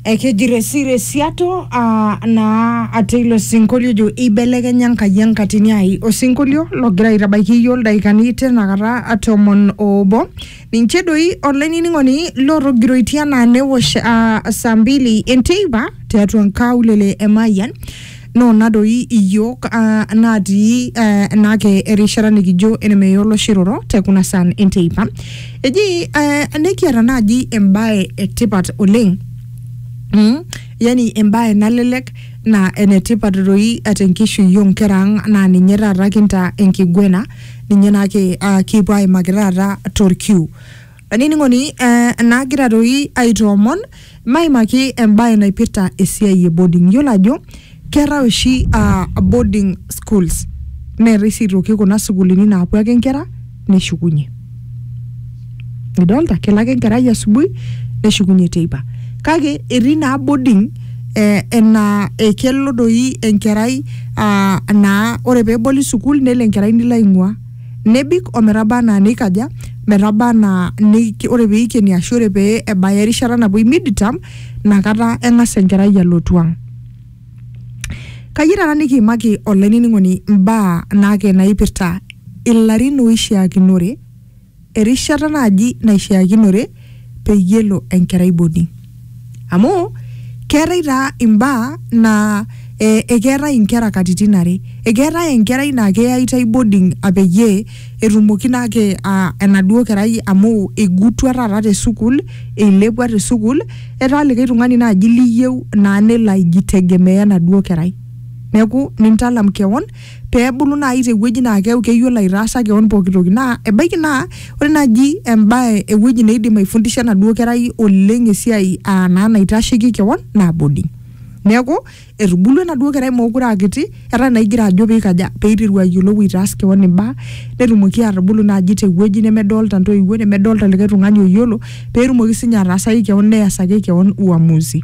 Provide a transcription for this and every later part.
Ekeji resiresiato aa naa ate ilo sinkolio ojo eibelekenya Enkai enkatini ai. Osinkolio logira aitabaiki iyiook ildaikani tinakata tomon oobo. Ninche doi olainining'oni lotogiroitie anaa newosh aa saa mbili enteipa tiatua nkaulele e Mayian Noo na doi iyiook uh, naatii uh, enaake erishata nikijo enemeya olosho iroro te kuna saan enteipa. Eji uh, nekiata naaji embae etipat oleng Mm. Yani embae nalelek na enetipat doi tenkishui onkera ang naa ninye taata kintaa enkiguena ninye naake uh, kipuo aimaki taata torkiu Olainining'oni, eh, naagira doi aitoomon maimaki embae naipirta esiai e boarding. Iyiolo ajo keetae oshi ah, boarding schools neetae sii aitoki kuna sukuulini naapuo ake inkera neshukunye. Nidolta, kelo ake enkerai asubuhi neshukunye teipa. Kake etii naa boarding eh, enaa kelo doi enkerai ah, naa ore pee eboli sukuul nelo enkerai nilo aing'ua. Nebik o metaba anaa neikaja? Metaba anaa ni, ore pee eikeni ashu ore pee ebaya erishata napuoi midterm, ina kata eng'as enkerai alotu ang. Kayieu taata nikiimaki olainining'oni imbaa naake naipirta ilarin oishiakinore. erishata naaji naishiakinore peyie elo enkerai boarding amu keetae taa imbaa naa eh, ekeetae inkera katitin are ekeetae enkerai naa keyaitae boarding apeyie etumoki naake uh, enaduo kerai amu igutua taata te sukuul eilepua te sukuul etaa likae tung'ani naaji liyieu naa nelo aijitegemea enaduo kerai neeku nintalam kewon pee ebulu naaji tewueji naa keeku keyiolo aitaasa keon pooki toki naa ebaiki naa ore naaji embae ewueji neidim aifundisha enaduo kerai oleng esiai aa naa naitasheki keon naa boarding neeku etubulua enaduo kerai mookure aa kiti etaa naa igira ajo piikaja peiteru ayiolou aitaas keon imbaa netumoki atubulu naaji tewueji nemedolta intoiwuo nemedolta likae tung'ani oyiolo petumoki sinye ataasaki keon neyasaki keon uamuzi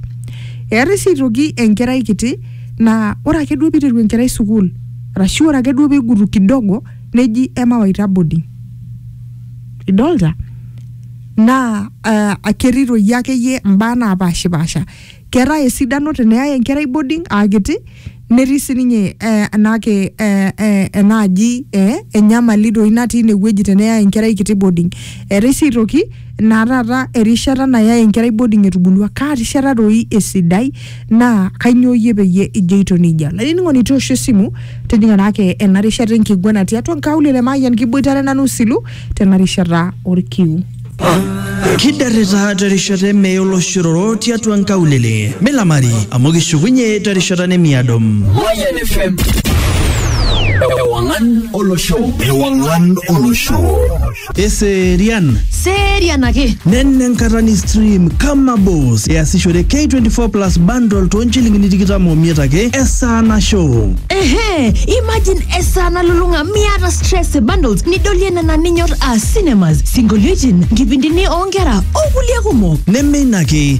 eetae sii aitoki enkerai kiti. naa ore ake duo piteru enkerai sukuul arashu ore ake duo pigutu kidogo neji emawaita boarding idolta naa uh, ketii toi akeyie imbaa napashipasha keetae esidano teneyai enkerai boarding akiti netii sininye eh, enake eh, eh, enaaji eh, enyamali toi natii inewueji teneyai enkerai kiti boarding eetae sii aitoki naa taata erishata nayae enkerai boarding etubulua kaa rishata doi esidai naa kainyoo iyie peyie ijoito nejia olainining'oni toosho esimu tijing'a naake ena rishata enkiguana tiatua nkaulele maayian kiboitare nanu silu tena rishata orkiu Kidarrita terishata eme oloshororo tiatua nkaulele. Milamari amu kishukunye terishata nemiado. Mayan FM. Ewangan Olosho. Ewangan Olosho. Eserian. Serian ake. Nenne enkata ni stream kama boss. Easishore K24 Plus bundle too nchilingini tikitam omiet ake esaa nasho. Ehe, imagine esaa nalulung'a miata stress e bundles nidolie nena ninyor aa cinemas, sinkolioitin, nkipindini oonkera okulie kumok. Neme ina ake,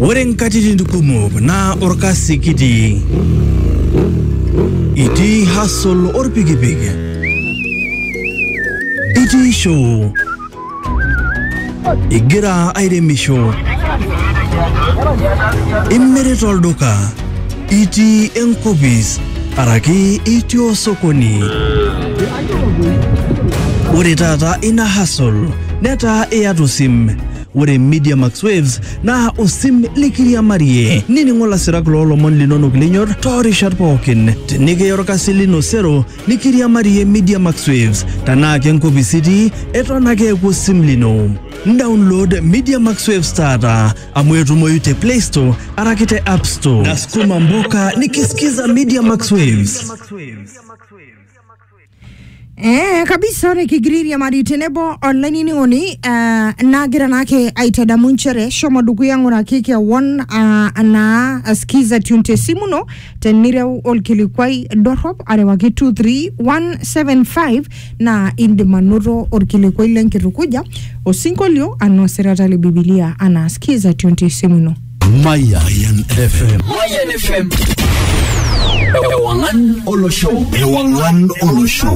Ore nkatitin kumok naa orkasi kitii. Itii hustle orpikipik. Itii show. Igira airemisho. Imirita olduka. Itii enkopis araki itii osokoni. Ore taata ina hustle netaa iyata osim Ore Media Max Waves naa osim likiriamarie. Nining'o lasirak loo lomon linonok linyor too rishat pookin. Tenikiya olkasi lino sero nikiriamarie Media Max Waves. Tenaa ke nkopis itii, eton ake eeku osim lino. Download Media Max Waves taata amu etumoyu te Play Store araki te App Store. Nasukuma mboka nikisikiza Media Max Waves. Eh, kabisa ore kigiriri amari tenebo olainining'oni eh, nagira naake aitadamu nchere shomo dukuya ng'uraki kewon ah, naa askiza tune tesimu ino tenireu olkilikwai dorrop arewaki 23175 naa indim anoto olkilikwai lenkitukuja osinkolio anaa osirata le bibilia anaa skiza tune tesimu ino Mayan FM. Mayan FM. Ewangan Olosho. Ewangan Olosho.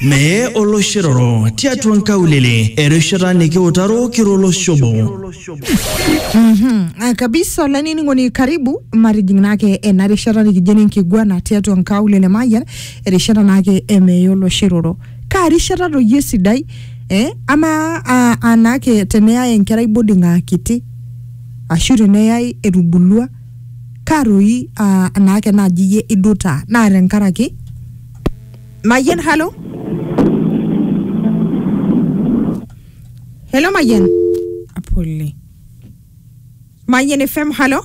Mee oloshiroro tiatua nkaulele erishata nikiutaro kiroloshobo. Mhm. Ah, kabisa olainining'oni karibu matijing naake ena rishata nikijo enenkiguana tiatua nkaulele mayian erishata naake emeyiolo shiroro kaa rishata toyie esidai eh? amaa ah, anaake teneyai enkerai boarding aa kiti ashu teneyai etubulua kaa toki aa enaake naaji iyie idutaa naa tenkaraki Mayian halo Hello Mayian pole Mayian FM halo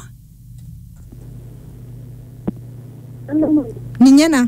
ninye ena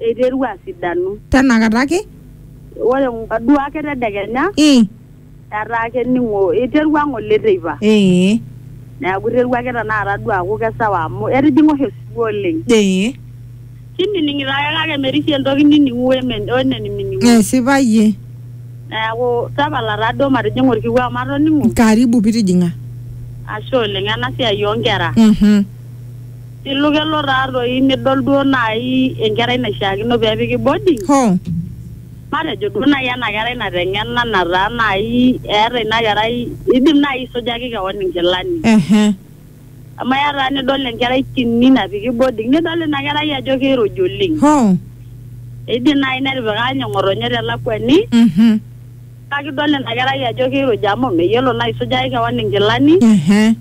eiterua asidanu. Tenakata ake. Ore ng'oduo ake tedekenya. Ii. Etaa kening'o, eiterua ng'ole teipa. Ee. Neaku eiterua ake tenakata duo aaku kesawa amu etijing'a oshi osiwuo oleng. Ee. Kinining'ito ake kake merishie entoki nining'u wenenimining'u. Esipa iyie. Neaku tapala taa duo matijing'a olkiu amu atoning'o. Karibu pitijing'a. Ashe oleng. Ena siai oo nkera. Mh. Ilu kelo taa toi midol duo naaji enkerai naishiakino pee epiki boarding. Hoo. Matejo duo naaji ena kerai nateng'ena nataa naaji eeta ina kerai idim naaji aisujaki kewon inkilani. Ehe. Amu eya taa nidol enkerai kini napiki boarding nidol ina kerai ajo kiiruj oleng. Hoo. Eidim naaji netipika ninye ng'otonye te lakwani. Mhm. Kake idol ina kerai ajo keiruja amu meyiolo naa aisujaki kewan inkilani Ehe.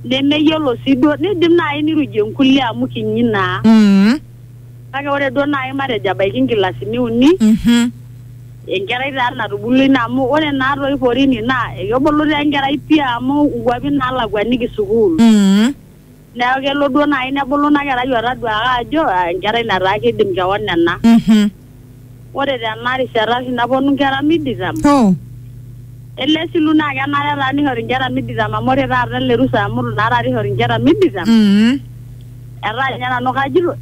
nemeyiolo sii duo neidim naaji neirujie nkulie amu kinyi naa Mm. kake ore duo naaji matejo ebaiki nkilasini uni Mhm. enkerai taa natubulua ina amu ore naa toi porini naa ekebulu taa enkerai pii amu nkuapi naalakuaniki sukuul Mm. neeku kelo duo naaji nebulu ina kerai otaduaaka ajo "Ah, enkerai nataa kidim kewon ena Mhm. ore tena rishata oshi naponu inkera miditam Oh. ele silu naa kenare taa nishori inkera miditam amu ore taata ele rusa amu itu naa taata ishori inkera miditam Mhm. etaa ninye nanu kajito